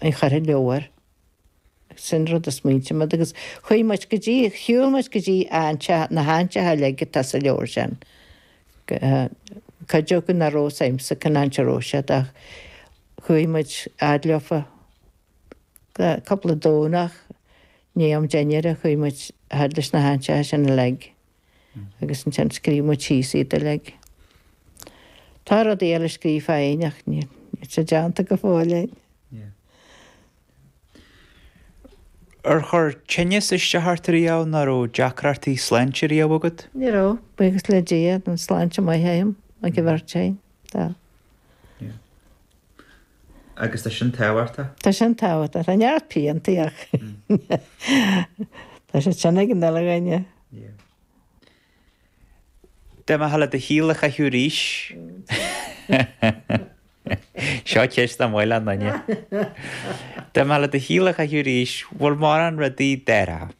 a chur i leabhar. Sin rud a smaointigh muid agus chuaigh muid go dtí, shiúil muid go dtí an teach, na hantacha uilig atá sa leabhar sin. Cuid acu nach raibh fhios a'msa cén áit a raibh siad ach chuaigh muid fhad leofa, cúpla Domhnach, i ndiaidh am dinnéir a chuaigh muid fhad leis na hantacha sin uilig. agus ansin scríobh muid síos iad uilig. Tá rudaí eile scríofa a'inn ach níl siad déanta go fóill a'inn. Ar chuir tinneas isteach ort ariamh, nó an raibh deacrachtaí sláinte ariamh agat? Ní raibh, buíochas le Dia, tá an sláinte maith a'm, ag an bheirt a'inn, tá. Agus tá sin tábhachtach? Tá sin tábhachtach, tá neart piantaí ach tá siad sin ag an uile dhuine. Dá mbeitheá le do shaol a chaitheamh arís. Seo ceist nach maith le duine. Dá mbeitheá le do shaol a chaitheamh arís, bhfuil mórán rudaí a d'athrófá?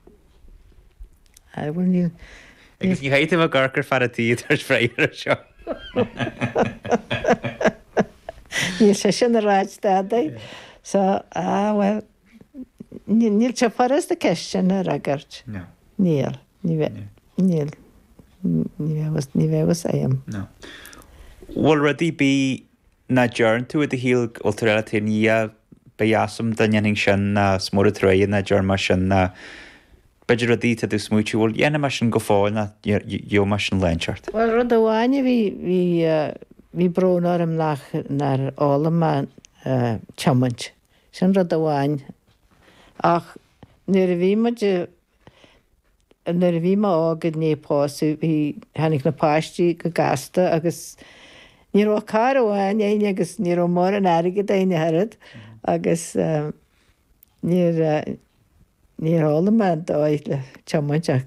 Aye, bhuel níl. Agus ní chaith tú mo gor gur fearr a tí tar éis bhreith air seo. Níl sé sin a ráit dadaidh. So, ah, bhuel. Níl sé furast an cheist sin a fhreagairt. Níl. Ní bheadh. Níl. Ní bheadh fhios a'm. Bhfuil rud a' bith nach dtearn tú i do shaol go bhfuil tú ag ráit dá mbeadh fhios a'm dá ndéanfainn sin ná is mór an truaighe nach dtearn mé sin nó b'fhéidir rudaí tá tú ag smaoitiú bhuel déanfaidh mé sin go fóill nó gheobhaidh mé sin déanta. Bhuel rud amháin a bhí, bhí, bhí brón orm nach, nár fhoghlaim mé tiomáint. Sin rud amháin. Ach nuair a bhí muid, nuair a bhí mé óg i ndiaidh pósadh, bhí, tháinig na páistí go gasta agus ní raibh ach carr amháin againn agus ní raibh mórán airgid againn ach oiread agus níor, níor fhoghlaim mé an dóigh le tiomáint ach.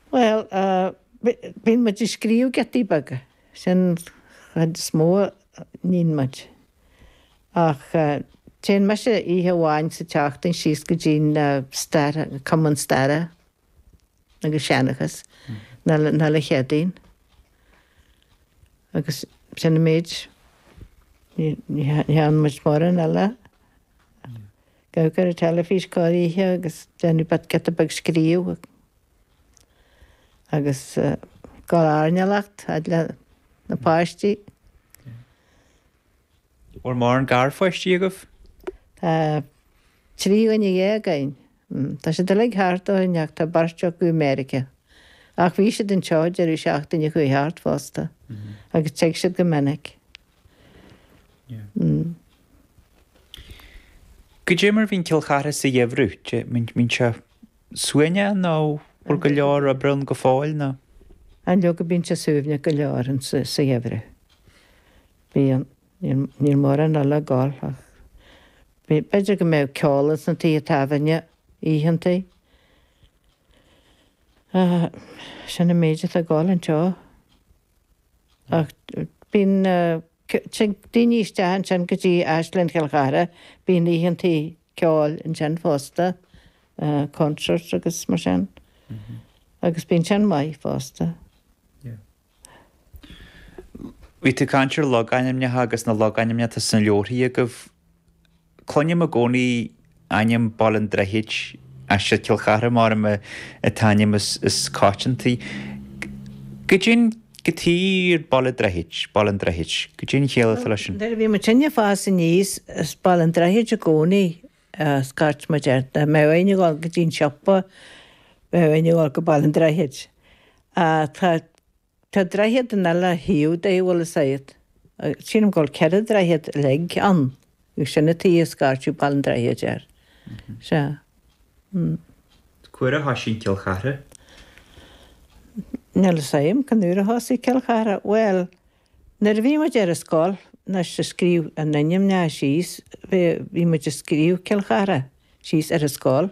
Bhuel, bíonn muid ag scríobh giotaí beaga, sin an chuid is mó a níonn muid. Ach téann mise oíche amháin sa tseachtain síos go dtí an stair, Cumann Staire agus Seanchais, an uile Chéadaoin. Agus sin an méid. Ní theann muid mórán eile. Ag amharc ar an teilifís corr oíche agus déanfaidh Pat giota beag scríobh. Agus ag gabháil ag airneál fhad le na páistí. Bhfuil mórán garpháistí agaibh? Tá trí dhuine déag againn. Tá siad uilig thart orainn acht tá beirt acu i Meiriceá. Ach bhí siad anseo deireadh seachtaine a chuaigh thart fosta agus tig siad go minic. Goidé mar a bhíonn Cill Chartha sa gheimhreadh? Bíonn sé suaimhneach nó bhfuil go leor oibre ann go fóill nó. Á leoga bíonn sé suaimhneach go leor sa gheimhreadh. Bíonn. Níl mórán eile ag gol ach b'fhéidir go mbeadh ceol ins na tithe tábhairne oícheanta ach sin an méid atá ag gol anseo. Ach bíonn daoine isteach ansin go dtí Áislann Chill Chartha, bíonn oícheanta ceoil ansin fosta, concerts agus mar sin agus bíonn sin maith fosta. Bhí tú ag caint ar logainmneacha agus na logainmneacha atá sna leabharthaí agaibh. Cluinim i gcónaí ainm Baile an Droichid, ansin Cill Chartha mar an t-ainm is coitianta. Go deimhin, go tír Baile Droichid, Baile an Droichid, go dtí an chéile atá leis an. Nuair a bhí muidinne ag fás aníos, is Baile an Droichid i gcónaí a scairt muid air, dá mbeinn ag dul go dtí an siopa, bheinn ag dul go Baile an Droichid. Tá, tá droichead an uile thaobh de, bhuel is é, sílim go bhfuil ceithre dhroichead uilig ann. Agus sin an tuige a scairteadh Baile an Droichid air. Sea. C'uair a thosaigh Cill Chartha? Níl 'fhios a'm cén uair a thosaigh Cill Chartha. Bhuel, nuair a bhí muid ar an scoil, anois a' scríobh ár n-ainmneacha síos, bhí muid a' scríobh Cill Chartha síos ar an scoil.